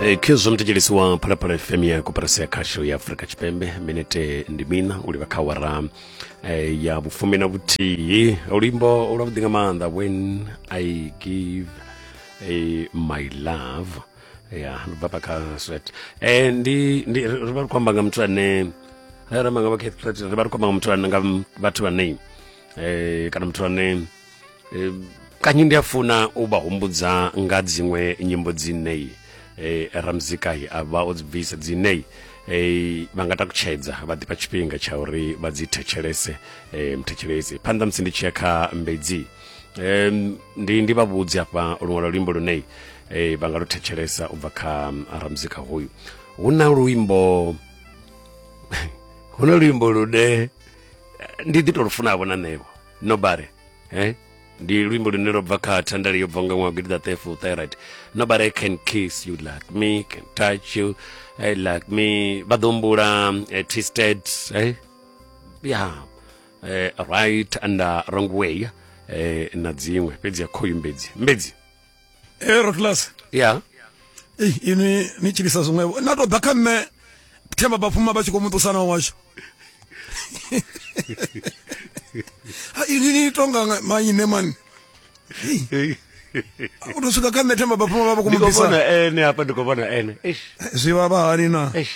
Eh, khezwo mthetshelesi wa phalaphala fm ya koperasi ya khasho ya afurika tshipembe minete ndi mina u livha kha wara eh, ya vhufumi na vhuthihi luimbo lwavhuḓi nga maanḓa when i give eh, my love ya ndi bva pa kha swet eh, ndi, ndi ri ri vha ri khou amba nga muthu ane eh, ri amba nga vha Kate Pratt, ri vha ri khou amba nga muthu ane nga m- vhathu vhane eh, kana muthu ane eh, kanyi ndi a funa u vha humbudza nga dziṅwe nyimbo dzineyi eh, ramzikahi a vha o dzi bvisa dzineyi eh, vha nga takutshedza vha ḓifha tshifhinga tsha uri vha dzi thetshelese eh, mthetshelesi phanḓa musi ndi tshi ya kha mbedzi um, ndi ndi vha vhudzi afha luṅwalo luimbo luneyi eh, vha nga lu thetshelesa u bva kha mm, ramzika hoyu hu na luimbo hu na luimbo lune eh, ndi ḓi to lufunavho na nṋevo nobare eh? ndi luimbo lune lwa bva kha thandale yo bva nga ṅwaha gidi ṱaṱefu thyroid nobody can kiss you like me can touch you eh, like me vha ḓo humbula eh, twisted eh? yeah. eh, right and uh, wrong way eh, na dziṅwe fhedzi ya khoyu mbedzi mbedzi e rotlas ya ei inwi ni tshilisa zwiṅwevho na tou ḓa kha nṋe themba bafuma vha tshi khou muṱusana washu ha inwi ni tonga maine mani u tou swika kha nṋe themba bafuma vha vha khou muṱusana ene hapa ndi khou vhona ene eh, zwi vha vha hani na eh.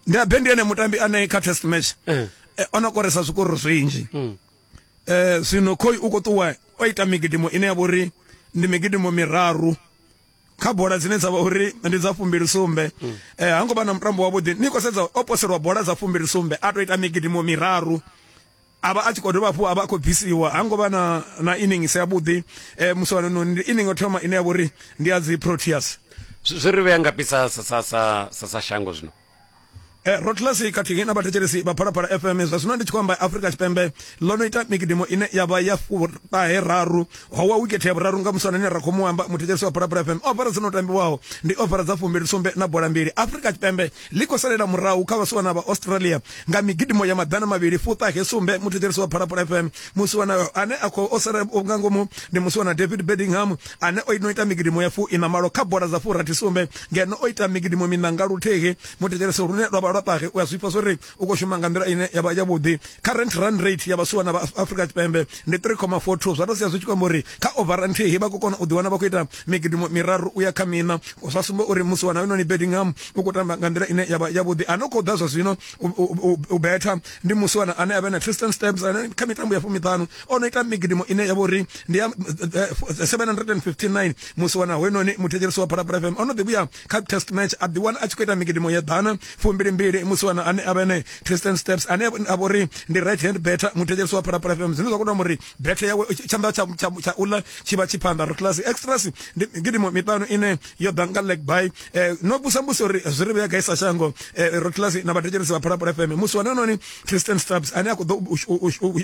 ndi abe ndi ene mutambi ane kha test match eh. ono koresa zwikororo zwinzhi mm. eh zwino khoi u kho ṱuwa o ita migidimo ine ya vhori ndi migidimo miraru kha bola dzine dza vha uri ndi dza fumbili sumbe mm. eh ha ngo vha na mutambo wavhuḓi ni khou sedza o poselwa bola dza fumbili sumbe a to ita migidimo miraru avha a tshi khou dovha hafhu a vha a khou bvisiwa ha ngo vha na na innings ya vhuḓi um eh, musuwanoni ndi inning o thoma ine ya vhori ndi ya dzi proteas zwi ri vhea nga pisa sa sa sa sa shango zwino Eh, rotlasi khathihi na vhathetshelesi vha phalaphala fm zwa zwino ndi tshi khou amba afurika tshipembe ḽo no ita mikidimo ine ya vha ya furahe raru howa wikethe ya vhuraru nga musana ine ra khou mu amba muthetshelesi wa phalaphala fm ofara dzo no tambiwaho ndi ofara dza fumbili sumbe na bola mbili afurika tshipembe ḽi khou salela murahu kha vhasiwana vha australia nga migidimo ya maḓana mavhili fuṱahe sumbe muthetshelesi wa phalaphala fm musiwana ane a khou o sala nga ngomu ndi musiwana david bedingham ane o no ita migidimo ya fu ina malo kha bola dza fu rathi sumbe ngeno o ita migidimo mina nga luthihi muthetshelese lune lwa vha lwa ṱahe u a zwifha zwo ri u khou shuma nga nḓila ine ya vha yavhuḓi current run rate ya vhasuwa na vha afrika tshipembe ndi 3,42 zwa tou sia zwi tshi kwamba uri kha ovara nthihi vha khou kona u ḓiwana vha khou ita migidimo miraru u ya kha mina zwa sumba uri musi wa na hoyunoni bedingham u khou tamba nga nḓila ine ya vha yavhuḓi a no khou ḓa zwa zwino u betha ndi musi wana ane a vha na tristan stabs ane kha mitambo ya fumiṱanu o no ita migidimo ine ya vha uri ndi ya 759 eh, eh, musi wana hoenoni muthetshelesi wa phalaphala fm o no ḓi vhuya kha test match a ḓiwana a tshi khou ita migidimo ya ḓana fumbilimbili musi wana ane a vhene tristan steps ane a vha uri ndi right hand better muthetshelesi wa phalaphala fm zwine zwa khou tamba uri better yawe tshanḓa tsha uḽa tshi vha tshi phanḓa ri class extras ndi migidimo miṱanu ine yo ḓa nga leg by eh, no vhusa mbusi uri zwi ri vhuya gaisa shango ro class na vhathetshelesi vha phalaphala fm musi wana hoenoni Tristan Stubbs ane a khou ḓo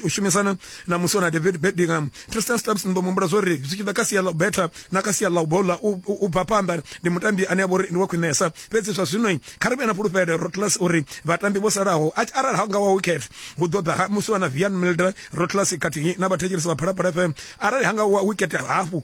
u shumisana na muswa na David Bedingham Tristan Stubbs ni ḓo muhumbula zwo ri zwi tshi ḓa kha sia ḽa u betha na kha sia ḽa u bola u bva phanḓa ndi mutambi ane a vha uri ndi wa khwinesa fhedzi zwa zwino kha ri vhe na fhulufhelo Rotlas uri vhatambi vho salaho arali ha nga wa wicket hu ḓo ḓa muswa na Vian Milder Rotlas khathihi na vhathetshelesi vha Phalaphala FM arali ha nga wa wicket hafhu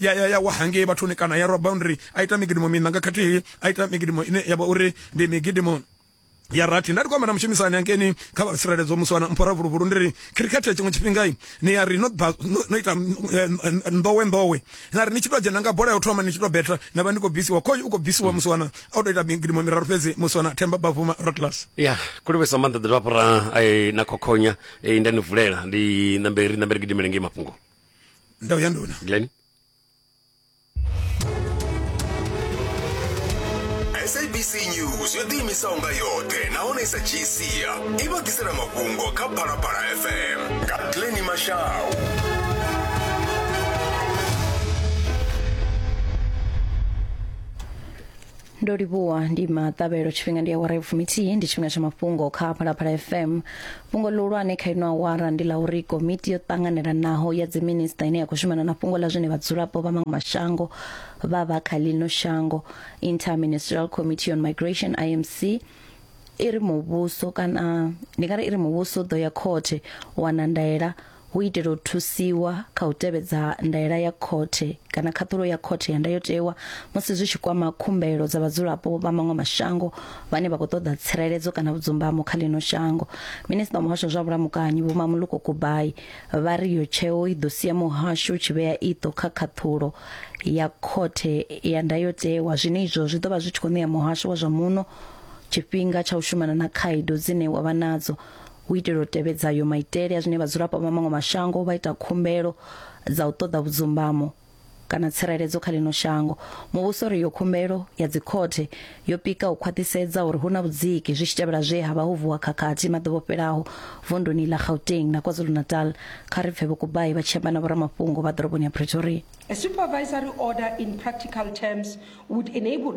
ya ya ya wa hangei vhathuni kana ya rwa boundary a ita migidimo miṋa nga khathihi a ita migidimo ine ya vha uri ndi migidimo ya rathi nda ndi kwamba na mushumisani angeni kha vha tsireledzo musi wana mphora vuluvulu ndi ri khirikhethe tshiṅwe tshifhinga ni ya ri no no ita eh, eh, ndowe ndowe na ri ni tshi tou dzhena nga bola ya u thoma ni tshi tou betha na vha ni khou bvisiwa khoyu u khou bvisiwa musi wana a u tou ita migidimo miraru fhedzi musi wana themba bavuma rotlas ya kulivhesa maanḓa ḓirapora eh, na khokhonya nda ni vulela ndi nambe ri nambe ri gidimele ngei mafhungo ndaw ya nduna glen sabc news yo ḓiimisaho nga yoṱhe nahone i sa dzhii sia i vha ḓisela mafhungo kha phalaphala fm nga glen mashau ndo livhuwa ndi maṱavhelo tshifhinga ndi awara ya fumithihi ndi tshifhinga tsha mafhungo kha phalaphala fm fhungo ḽihulwane kha ino awara ndi ḽa uri komiti yo ṱanganelanaho ya dziminista ine ya khou shumana na fhungo ḽa zwine vhadzulapo vha maṅwe mashango vha vha kha ḽino shango interministerial committee on migration imc i ri muvhuso kana ndi nga ri i ri muvhuso u ḓo ya khothe u wana ndaela hu itela u thusiwa kha u tevhedza ndaela ya khothe kana khaṱhulo ya khothe ya ndayotewa musi zwi tshi kwama khumbelo dza vhadzulapo vha maṅwe mashango vhane vha khou ṱoḓa tsireledzo kana vhudzumbamo kha ḽino shango minista wa muhasho wa zwa vhulamukanyi vho mamuluko kubai vha ri yo tsheo i ḓo sia muhasho u tshi vhea iṱo kha khaṱhulo ya khothe ya ndayotewa zwine izwo zwi ḓo vha zwi tshi khou ṋea muhasho wa zwa muno tshifhinga tsha u shumana na khaedu dzine wa vha nadzo u itela u tevhedza yo maitele a zwine vhadzulapo vha maṅwe mashango vha ita khumbelo dza u ṱoḓa vhudzumbamo kana tsireledzo kha lino shango muvhuso ri yo khumbelo ya dzikhothe yo pika u khwaṱhisedza uri hu na vhudziki zwi tshi tevhela zwe ha vha ho vuwa khakhathi maḓuvha o fhelaho vunduni ḽa gauteng na kwazulu-natal kha ri pfe vhokubai vha tshi amba na vhoramafhungo vha ḓoroboni ya pretoria A supervisory order in practical terms would enable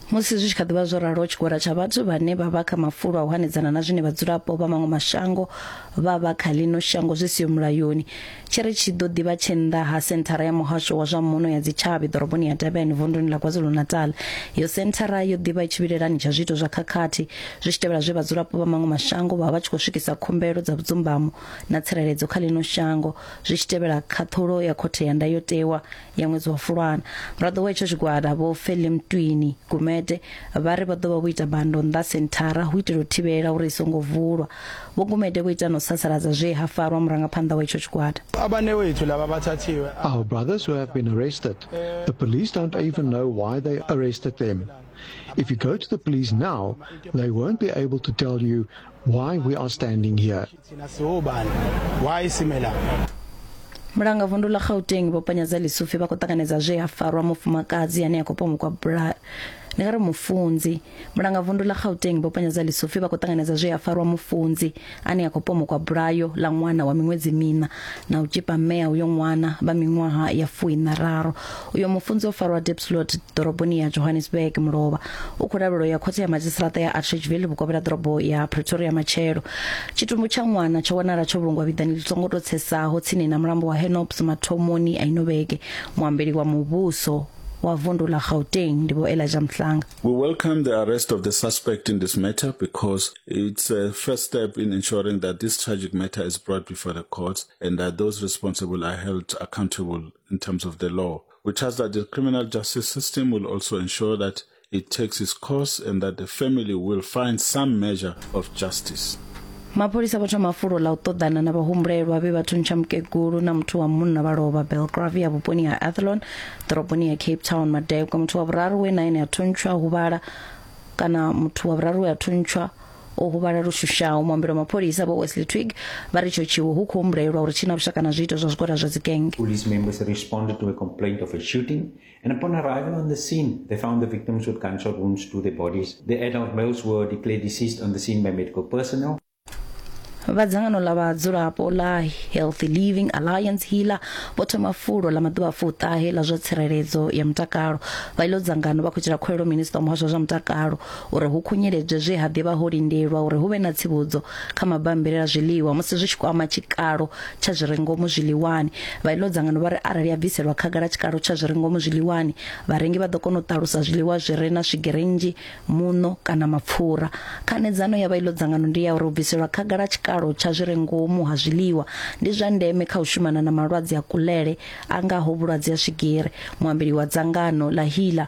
musi zwi tshi kha ḓivha zwo ralo tshigwada tsha vhathu vhane vha vha kha mafulo a u hanedzana na zwine vhadzulapo vha maṅwe mashango vha vha kha ḽino shango zwi siho mulayoni tshi ri tshi ḓo ḓivha tshe nnḓa ha senthara ya muhasho wa zwa muno ya dzitshavhi ḓoroboni ya durban vunduni ḽa kwazulu-natal yo senthara yo ḓivha i tshivhilelani tsha zwiito zwa khakhathi zwi tshi tevhela zwe vhadzulapo vha maṅwe mashango vha vha tshi khou swikisa khumbelo dza vhudzumbamo na tsireledzo kha ḽino shango zwi tshi tevhela khaṱhulo ya khothe ya ndayotewa ya ṅwedzi wa fulwana muraḓo wa itsho tshigwada vho feli mtwini gumede vha ri vha ḓo vha vho ita bando nnḓa senthara hu itela u thivhela uri i songo vulwa vho gumede vho ita na u sasaladza zwe ha farwa murangaphanḓa wa itsho tshigwada Our brothers who have been arrested, the police don't even know why they arrested them. If you go to the police now, they won't be able to tell you why we are standing here. Thina siwubani? Why simela? mulanga vundu ḽa gauteng vho panyadza lisufi vha khou ṱanganedza zwe ha farwa mufumakadzi ane a khou pomukwa bula ndi nga ri mufunzi mulanga vundu ḽa gauteng vho panyadza lisufi vha khou ṱanganedza zwe ha farwa mufunzi ane a khou pomukwa bulayo ḽa ṅwana wa miṅwedzi mina na u tshipa mmea uyo ṅwana vha miṅwaha ya fuiṋararu uyo mufunzi o farwa depslot ḓoroboni ya johannesburg mulovha u khou lavhelwa ya khothe ya madzhisiṱiraṱa ya atridgeville vhukovhela ḓorobo ya pretoria matshelo tshitumbu tsha ṅwana tsho wanala tsho vhulungwa vhiḓani ḽi songo tou tsesaho tsini na mulambo wa henops mathomoni a ino vhege muambeli wa muvhuso wa vundu la gauteng ndi vho elijah mhlanga We welcome the arrest of the suspect in this matter because it's a first step in ensuring that this tragic matter is brought before the courts and that those responsible are held accountable in terms of the law. We trust that the criminal justice system will also ensure that it takes its course and that the family will find some measure of justice. mapholisa vho thoma fulo ḽa u ṱoḓana na vhahumbulelwa vhe vha thuntsha mukegulu na muthu wa munna vha lovha belgravia vhuponi ha athlon ḓoroboni ya cape town madekwe muthu wa vhuraru we na ene a thuntshwa huvhala kana muthu wa vhuraru we a thuntshwa o huvhala lu shushaho muambeli wa mapholisa vho wesley twig vha ri itsho tshiwo hu khou humbulelwa uri tshi na vhushaka na zwiito zwa zwigwada zwa dzigenge Police members responded to a complaint of a shooting, and upon arriving on the scene, they found the victims with gunshot wounds to their bodies. The adult males were declared deceased on the scene by medical personnel. vha dzangano ḽa vhadzulapo ḽa healthy living alliance hila vho thoma fulo ḽa maḓuvha fuṱahe ḽa zwa tsireledzo ya mutakalo vha iḽo dzangano vha khou itela khuwelo minista wa muhasho wa zwa mutakalo uri hu khunyeledzwe zwe ha ḓivha ho lindelwa uri hu vhe na tsivhudzo kha mabammbiri a zwiḽiwa musi zwi tshi kwama tshikalo tsha zwi re ngomu zwiḽiwani vha iḽo dzangano vha ri arali ya bviselwa khagala tshikalo tsha zwi re ngomu zwiḽiwani vharengi vha ḓo kona u ṱalusa zwiḽiwa zwi re na swigiri nnzhi muṋo kana mapfura khanedzano ya vha iḽo dzangano ndi ya uri u bviselwa khagala tshikalo tsha zwi re ngomu ha zwiḽiwa ndi zwa ndeme kha u shumana na malwadze a kulele a ngaho vhulwadze ha swigiri muambeli wa dzangano ḽa hila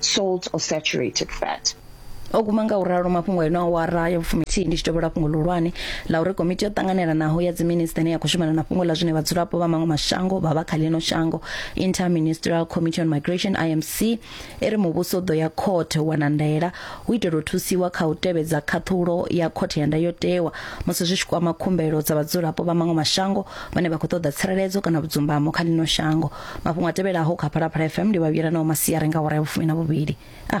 salt or saturated fat. O guma nga u ralo mafhungo eno awara ya vhufumi thihi ndi tshi tevhela fhungo ḽihulwane ḽa uri komiti yo ṱanganelanaho ya dziminisiṱa ine ya khou shumana na fhungo ḽa zwine vhadzulapo vha maṅwe mashango vha vha kha ḽino shango Inter-Ministerial Committee on Migration IMC i ri muvhuso u ḓo ya khothe u wana ndaela u itela u thusiwa kha u tevhedza khaṱhulo ya khothe ya ndayotewa musi zwi tshi kwama khumbelo dza vhadzulapo vha maṅwe mashango vhane vha khou ṱoḓa tsireledzo kana vhudzumbamo kha ḽino shango mafhungo a tevhelaho kha phalaphala fm ndi vhavhuyela nao masiari nga hora ya vhufumi na vhuvhili a